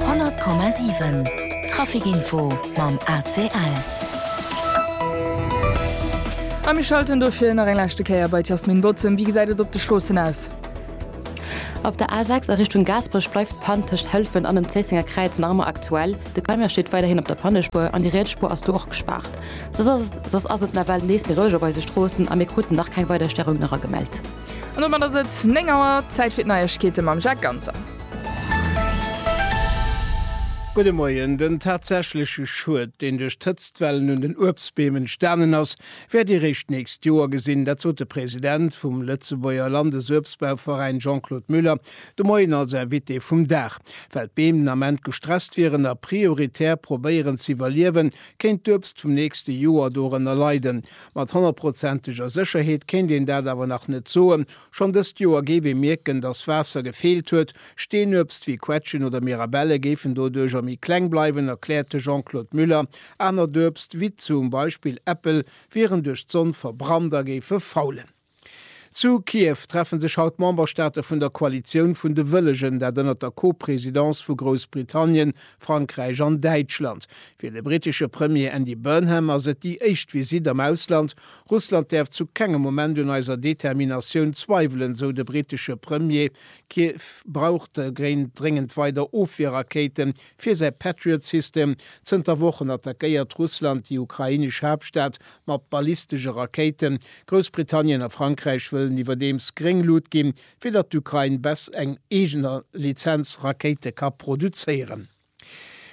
100,7 Trafic Info mam ACL. A mir schalten dofir nach eng leschte Kéier bei d'Jasmine Bozem. Wéi gesäit et op de Stroossen aus? Op der A6 a Richtung Gaasperech bleift d'Pann tëscht Hëlfen an dem Zéissenger Kräiz nach ëmmer aktuell. De Camion steet weiderhin op der Pannespuer an déi riets Spuer ass do och gespaart. Soss ass et nawell nees méi roueg op eise Stroossen a mir kruten nach keng weider Stäreungen eragemellt. An domat ass et 9 Auer, Zäit fir d'Neiegkeete mam Jacques Ganser. Gudde Moien, Den tatsächleche Schued, deen duerch d'Hëtztwellen un den Uebstbeem entstanen ass, wäert eréischt d'nächst Joer gesinn. Dat sot de President vum Lëtzebuerger Landesuebstbauveräin Jean-Claude Muller de Moien als Invité vum Dag. Well d'Beem den Ament gestresst wieren a prioritär probéieren z'iwwerliewen, kéint d'Uebst vum nächste Joer dorënner leiden, Mat honnertprozenteger Sécherheet kéint een dat awer nach net soen. Schonn dëst Joer géif ee mierken, datt Waasser gefeelt huet. Steenuebst wéi Quetschen oder Mirabelle géifen doduercher méi kleng bleiwen, erkläert de Jean-Claude Muller. Anert Uebst, wéi zum Beispill Äppel, wieren duerch d'Sonn verbrannt a géife faulen. Zu Kiew treffe sech haut d'Memberstaate vun der Koalitioun vun de Wëllegen, dat ënnert der Co-Presidence vu Groussbritannien, Frankräich an Däitschland. Fir de brittesche Premier Andy Burnham ass et déi éischt Visitt am Ausland. Russland däerf zu kengem Moment un eiser Determinatioun zweiwelen, sou de brittesche Premier. Kiew brauch dogéint dréngend weider Ofwierrakéiten, Fir säi Patriot-System. Zënter Wochen attackéiert Russland déi ukrainesch Haaptstad mat ballistesche Rakéiten. Groussbritannien a Frankräich wëllen iwwerdeems gréng Lut ginn, fir datt d'Ukrain bes eng eegener Lizenz Rakéite ka produzéieren.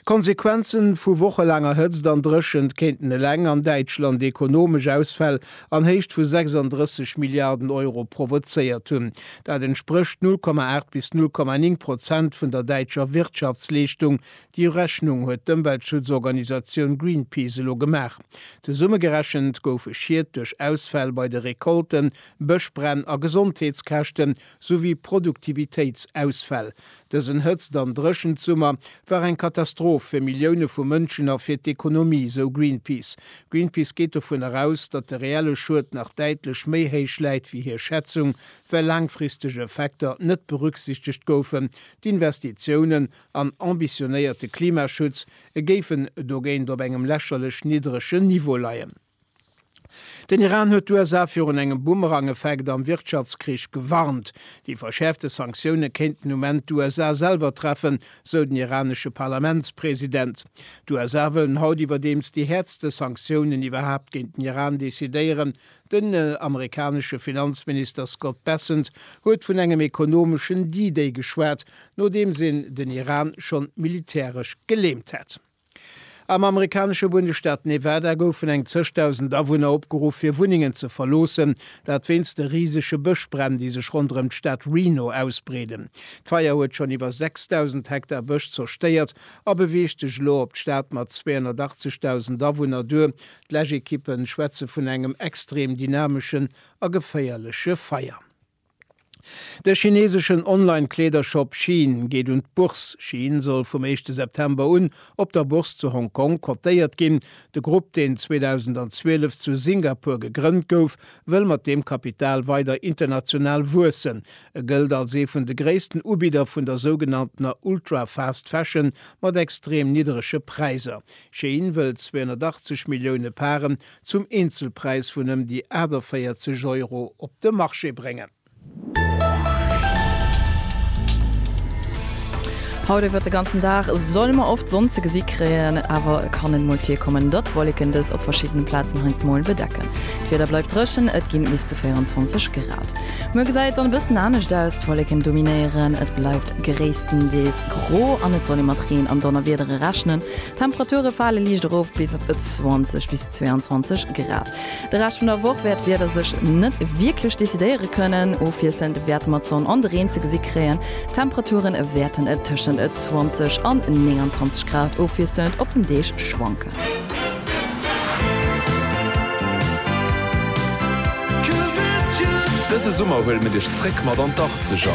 Konsequenze vu wochelaanger Hëtzt an Dréchent kéinten eleng an Däitschland ekonomesch Ausfäll an Héicht vu 36 Milliarden Euro provozéiert hunn. Dat entsprécht 0,8 bis 0,9 Prozent vun der däitscher Wirtschaftsleeschtung. Déi Urechnung huet d'Ëmweltschutzorganisatioun Greenpeace elo gemaach. Zesummegerechent goufe Schied duerch Ausfäll bei de Recolten, Bëschbränn a Gesondheetskäschten souwéi Produktivitéitsausfäll. Dësen Hëtzt an Dréchent-Summer war eng Katastroph fir Millioune vu Mënschen a fir d'Ekonomie, esou Greenpeace. Greenpeace geet dovun eraus, datt de reelle Schued nach däitlech méi héich läit wéi hir Schätzung, well laangfristeg Effekter net berücksichtegt goufen. D'Investitiounen an ambitionéierte Klimaschutz géifen dogéint op engem lächerlech niddregen Niveau leien. Den Iran huet d'USA virun engem Boomerang-Effekt am Wirtschaftskrich gewarnt. Déi verschäerfte Sanktioune kéinten um Enn d'USA selwer treffen, sou den iranesche Parlamentspresident. D'USA wëllen haut iwwerdeems déi häertste Sanktiounen iwwerhaapt géint den Iran decidéieren. Den amerikanesche Finanzminister Scott Bessent huet vun engem ekonomeschen D-Day geschwat, nodeems een den Iran schonn militäresch geleemt hätt. Am amerikanesche Bundesstaat Nevada goufen eng zeg Dausend Awunner opgeruff, fir Wunnengen ze verloossen, dat wéinst de risege Bëschbränn, déi sech ronderëm d'Stad Reno ausbreeden. D'Feier huet schonn iwwer 6.000 Hektar Bësch zerstéiert a beweegt sech elo op d'Stad mat 280 Dausend Awunner duer. D'Läschekippe schwätze vun engem extrem dynameschen a geféierleche Feier. De chineseschen Online-Kleedershop Shein geet un d'Bourse. Shein soll vum éischte September un op der Bourse zu Hong Kong cotéiert ginn. De Grupp, deen 2012 zu Singapur gegrënnt gouf, wëll mat deem Kapital weider international wuessen. E gëllt als ee vun de gréissten Ubidder vun der sougenanntener Ultra-Fast Fashion mat extrem nidderege Präisser. Shein wëll 280 Millioune Paren zum Eenzelpräis vun ëm déi 48 Euro op de Marché bréngen. Haut iwwert de ganzen Dag solle mer oft Sonn ze gesi kréien, awer et kann et mol virkommen, datt Wolleken dës op verschiddene Plazen heiansdo mol bedecken. D'Wieder bleift dréchen, et ginn bis zu 24 Grad. Muer gesäit et dann e bëssen anescht aus, d'Wolleken dominéieren, et bleift gréisstendeels gro an et soll ee mat Reen an Donnerwiedere rechnen. D'Temperature fale liicht erof bis op 20 bis 22 Grad. De Rescht vun der Woch wäert d'Wieder sech net wierklech decidéiere kënnen. Ofwiesselnd wäerte mer d'Sonn an de Reen ze gesi kréien. D'Temperature wäerten tëschent 20 an 29 Grad ofwiesselnd op den Deeg schwanken. Dëse Summer huele mir dech zréck mat an d'Arzeger!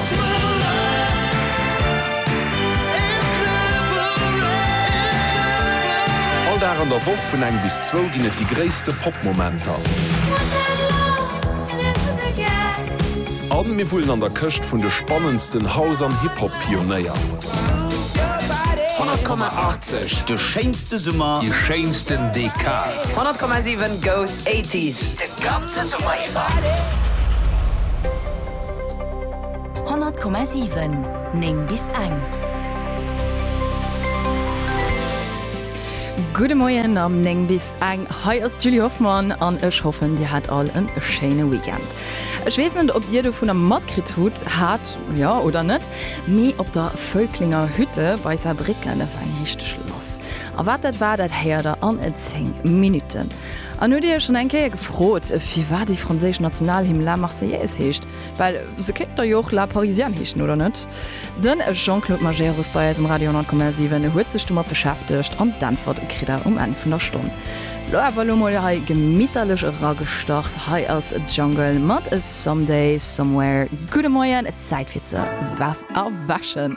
All Dag an der Woch vun eng bis zwou ginn et déi gréisste Pop-Momenter. A mir wullen an der Këscht vun de spannendsten House an Hip-Hop-Pionéier. 100,80 De schéinsten. De Summer. Déi schéinsten Dekad. 100,7 goes 80s de ganze Summer iwwer. 100,7 9 bis eng. Gudde Moien am 9 bis eng. Hei ass d'Julie Hoffmann an ech hoffen, Dir hat all e schéine Weekend. Ech weess net, ob Dir dovunner matkritt hutt hat, jo oder net, Mee op der Völklinger Hütte bei Saarbrécken ef eng richteg lass. A wat dat war, dat héiert der an 10 Minutten. An huet dir iech schonn eng Kéier gefrot, firwat déi franséisch Nationalhymn La Marseillaise heescht? Well se kéint da jo och La Parisienne heeschen, oder net? De Jean-Claude Majerus bei eis um Radio 10,7 huet sech domat beschäftegt an d'Äntwert kritt der um Enn vun der Stonn. Lo awer elo mol hei gemitterlech eragestart. Hei ass Jungle mat Someday Somewhere. Gudde Moien. Zäit fir ze wäf a wäschen!